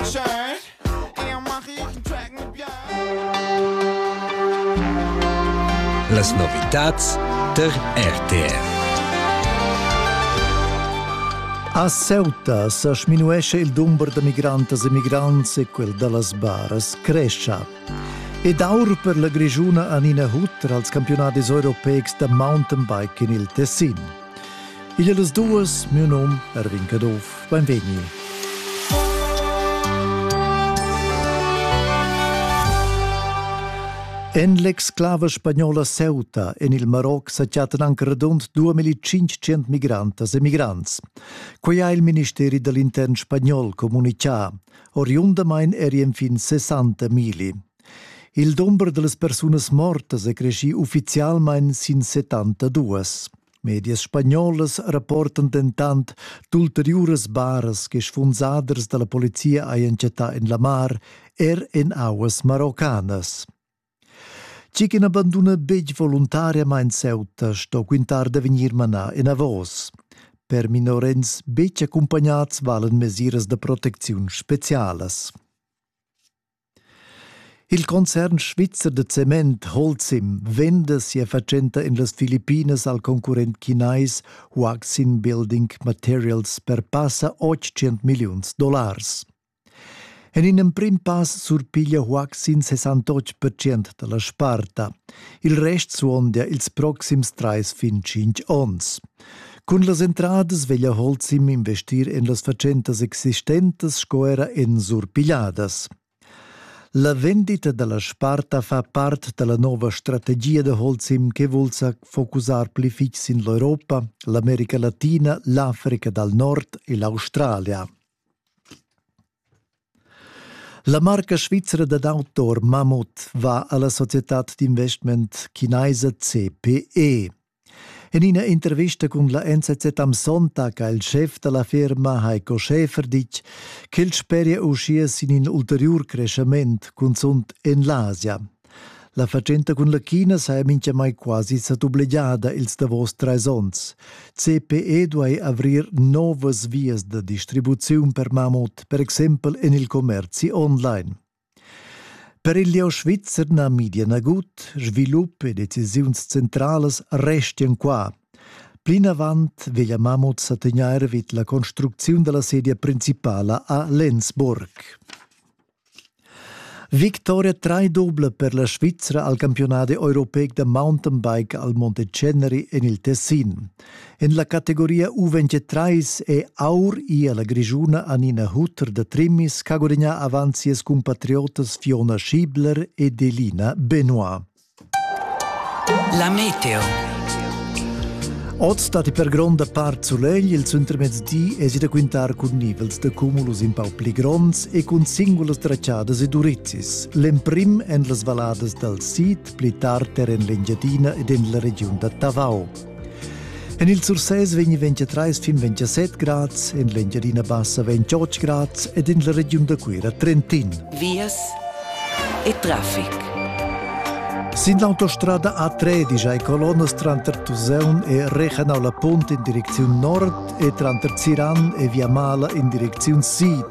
Schön, er mach ich einen Tracken Las novitats tar RTR. A Ceuta sa sminuesce il dumber da migrantas e migrants e quel da las baras crescia. Ed aur per la Grigiuna Anina Hutter als campionadis europeics da mountainbike in il Tessin. Igl das duas, miu num Erwin Caduff, beinvegni. En l'exclava spagnola Ceuta en il Maroc sa chattan anche radund 2500 migrantas e migrants. Quei ha il ministeri dall'intern spagnol comunicà. Oriundamain eri enfin 60 mili. Il dumber dallas persunas mortas è creschì uffizialmain sin 72. Medias spagnolas rapportan dentant d'ulteriuras baras che sfunsaders da la polizia hajan chattà en la mar, er en auas maroccanas. Tgi che n'abanduna betg voluntariamain Ceuta sto quintar da vegnir manà enavos. Per minorens betg accumpagnads valan mesiras da protecziun specialas. Il concern svizzer da cement Holcim venda sia fatschenta en las Filippinas al concurrent chinais Waxin Building Materials per passa 800 milliuns dollars. En in emprim pass surpiglia Waxin 68% da la sparta. Il rest suondia ils proxims trais fin tschintg onns. Cun las entradas veglia Holzim investir en las fatschentas existentas sco era en surpigliadas. La vendita da la sparta fa part da la nova strategia da Holzim che vul sa focusar pli fitg sin l'Europa, l'America Latina, l'Africa dal Nord e l'Australia. La marca svizra dad outdoor Mammoth va a la societad d'investment chinaisa CPE. En ina intervista cun la NZZ am Sonntag ha il schef da la firma Heiko Schäfer ditg ch'el speria uschia sin in ulteriur creschament, cunzunt en l'Asia. La fatschenta cun la China saja mintgamai quasi sa dublegiada ils davos trais onns. CPE duai avrir novas vias da distribuziun per mamut, per exempel en il commerzi online. Per il lieu svizzer na midia nagut, svilup e decisiuns centralas restian qua. Plinavant veglia Mamut sa tegnair vid la construcziun della sedia principala a Lenzburg. Victoria trai doble per la Svizzera al campionat europeic da mountainbike al Monte Ceneri en il Tessin. En la categoria U23 è Aur ia la Grischuna Anina Hutter da Trimmis ch'ha gudagnà avant sias cumpatriotas Fiona Schiebler ed Elina Benoit. La meteo. Oz datti per gronda part sulegl, il suntermezdi èsi da quintar cun nivels da cumulus in pau pli gronds e cun singulas trachadas e durizis. L'emprim en las valladas dal sid, pli tard er en l'Engiadina ed en la regiun da Tavau. En il Sursés vegn 23 fin 27 grads, en l'Engiadina Bassa 28 grads ed en la regiun da Cuira Trentin. Vias e traffic. Sin l'autostrada A3 digia e colonnas tranter Tuseun e Rechenau la Punt in direcziun nord e tranter Ziran e Viamala in direcziun sid.